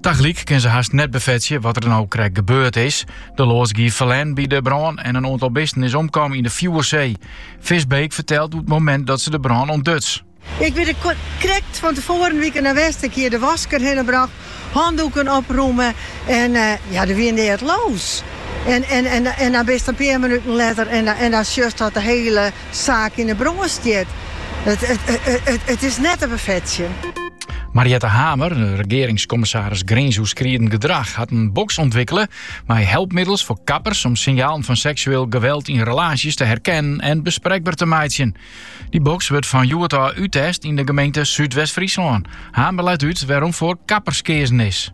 Tagelyk kin se hast net befetsje wat der no krekt gebeurd is. De loads gie ferlern by de brân en in oantal bisten is omkommen yn de fjoersee. Visbeek fertelt oer it momint dat se de brân ûntduts. Ik wie der krekt fan tefoaren wie ik der noch west. Ik hie de wask der hinne brocht, hanndoeken opromme en ja, der wie neat loos. En dan bist in pear minuten letter en dan sjochst dat de hiele. Saak yn 'e brân stiet. It is net te befetsjen. Mariette Hamer, regeringskommissaris grinsoerskridend gedrach, hat in boks ûntwikkele mei helpmiddels foar kappers om sinjalen fan seksueel geweld yn relaasjes te herkennen en besprekber te meitsjen. Dy boks wurdt fan hjoed ôf úttest yn de gemeente Súdwest-Fryslân. Hamer leit út wêrom foar kappers keazen is.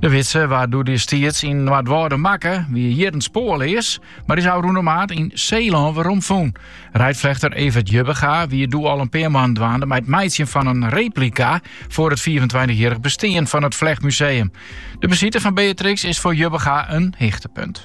De widze waard doedestiids yn Noardwâlde makke, wie jierren spoarleas, mar is ôfrûne maart yn Seelân weromfûn. Reidflechter Evert Jubbega wie doe al in pear moannen dwaande mei it meitsjen fan in replika foar it fiifentweintich-jierrich bestean fan it flechtmuseum. De besite fan Beatrix is foar Jubbega in hichtepunt.